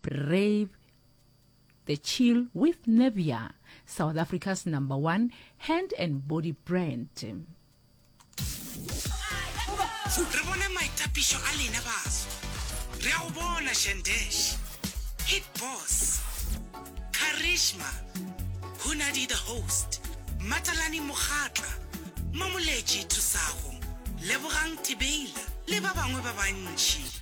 Brave the Chill with Nevia, South Africa's number one hand and body brand. Re bone maitapišo a lena baso. Re a go bona Shandesh, Hit Boss, Karishma, Hunadi the Host, Matalani Mokgatla, Mamoletši Thusago, Lebogang Tibeila le ba bangwe ba bantši.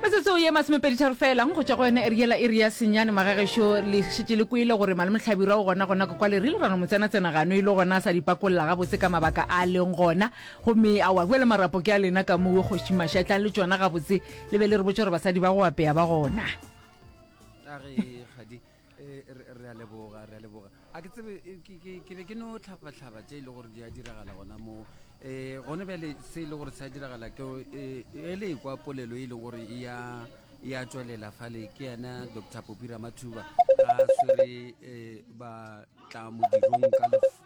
Metsotso ye masomepeditharo feelang go tšwa go yona eriela iri ya senyane magagešo le šetše le kwele gore Malome Hlabirwa o gonagona kwa le rile ra no mo tsenatsena gano e le gona a sa di pakolola gabotse ka mabaka a leng gona gomme a wa bjale marapo ke a lena ka mowe kgoši Mašatla le tšona gabotse le be le re botša gore basadi ba go apea ba gona. Eh, re a leboga re a leboga a ke tsebe eh, ke be ke no tlhabatlhaba tse e le gore di a diragala gona moo um gone bjale se e le gore se a diragala ke eh, e le kwa polelo e le gore e ya e a tswelela fale ke yena dr popira mathuba a swere um ba tla modirong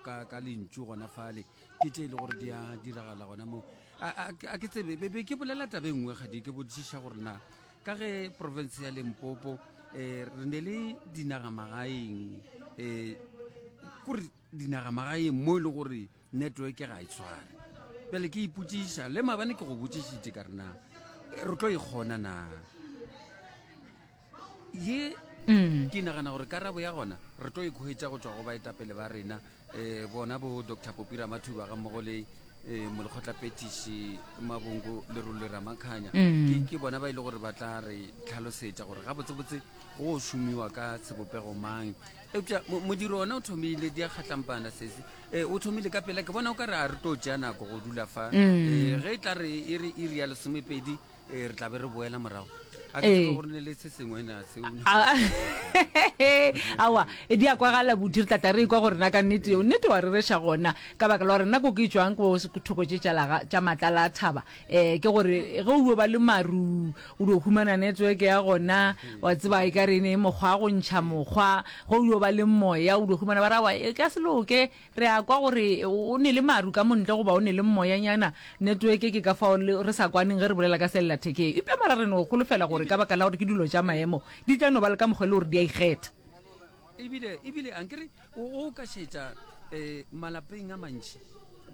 ka lentšu gona fale ke tse e le gore di a diragala gona moo a ke tsebe be ke bolela tabe nngwe gadi ke botsiša gore na ka ge profense ya lempopo um re ne le dinagamagaeng um kore dinagamagaeng mo e le gore network ga e tshware pele ke ipotsiša le mabane ke go botsišitše ka rena re tlo e kgona na ye mm. ke nagana gore karabo ya gona re tlo e kgwetsa go tswa go baetapele ba rena um bona bo doctor popi ramathuba ga mmogo le um molekgotlapetiši mabongo lerole ramakhanya mm. ke bona ba e le gore ba tla re tlhalosetša gore ga botsebotse go šomiwa ka sebopego mang eupša modiro ona o thomile di a kgatlampana sese um o thomile ka pela ke bona o ka re a re tlo tšea nako go dula fa um ge e tla re e re iri ya lesomepedi ee re tla be re boela morago a ke Ee. tsebe gore ne le se sengwe na seo A- awa e di a kwagala bodi re tlata re ikwa gore na ka nnete eo nnete wa rereša gona ka baka la gore nna ko ke tswang ko s- ko thoko tše tša laga- tša matlala a thaba um ke gore ge o yo ba le maru o dio humana network ya gona wa tseba e ka re e ne e mokgwa wa go ntšha mokgwa ge o yo ba le moya o dio humana ba ra wa e ka se loke Re a kwa gore o ne le maru ka montle goba o ne le mmoyanyana. Netweke ke ka fao re sa kwaneng ge re bolela ka sellathekeng. Eupša mola re no holofela gore ka baka la gore ke dilo tša maemo, di tla no ba le ka mokgwa e le gore di a ikgetha. Ebile, ebile a nkere o, o ka šetša um malapeng a mantši,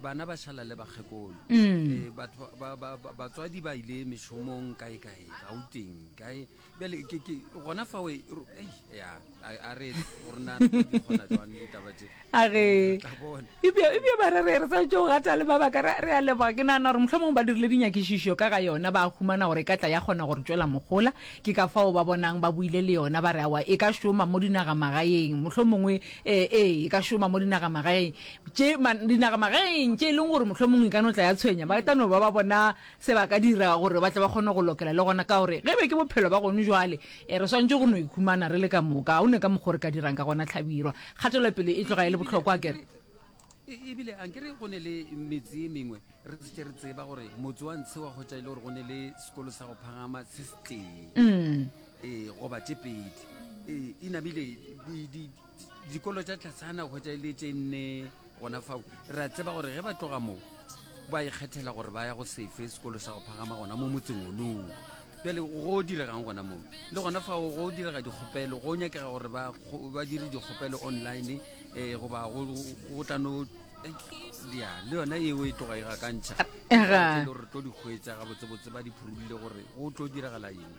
bana ba šala le bakgekolo, um batho ba, ba, ba, batswadi ba ile mešomong kae-kae, Gauteng, kae. bjale ke ke gona fa we ro- ei, ya a a re gore na re tlo di kgona jwang ditaba tse a ge Tla bona. ebja ebja ba re re re sa tšo gata le mabaka re re a leboga ke nagana gore mohlomong ba dirile dinyakišišo ka ga yona ba humana gore e ka tla ya kgona gore tšwela mogola ke ka fao ba bonang ba buile le yona ba re awa e ka šoma mo dinagamagaeng mohlomongwe ee ee e ka šoma mo dinagamagaeng tše ma- dinagamagaeng tše e leng gore mohlomong e ka no tla ya tshwenya ba tla no ba ba bona se ba ka dirago gore ba tle ba kgone go lokela le gona ka gore ge be ke bophelo ba gone jwale e re swantše go no ikhumana re le ka moka o ne ka mokgwa re ka dirang ka gona tlhabirwa kgatelopele e tloga e le bohlokwa kere e, ebile a nkere go ne le metse e mengwe re se re tseba gore motse wa ntshe wa kgotsa e le gore go ne le sekolo sa go phagama se se tee mm. ee goba tše pedi ee inabile dikolo tša tlasana go tša ile tše nne gona fao re a tseba gore ge ba tloga moo ba ikgethela gore ba ya go sefe sekolo sa go phagama gona mo motseng onoo pele go diregang gona moo le gona fao go direga dikgopelo go nyakega gore ba dire dikgopelo online um goba go tla no ya le yona eo e tloga e gakantšha gore tlo di hwetsa gabotsebotse ba di phurulile gore go tlo diragala eng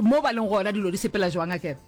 mo ba leng gona dilo di sepela jwang a kere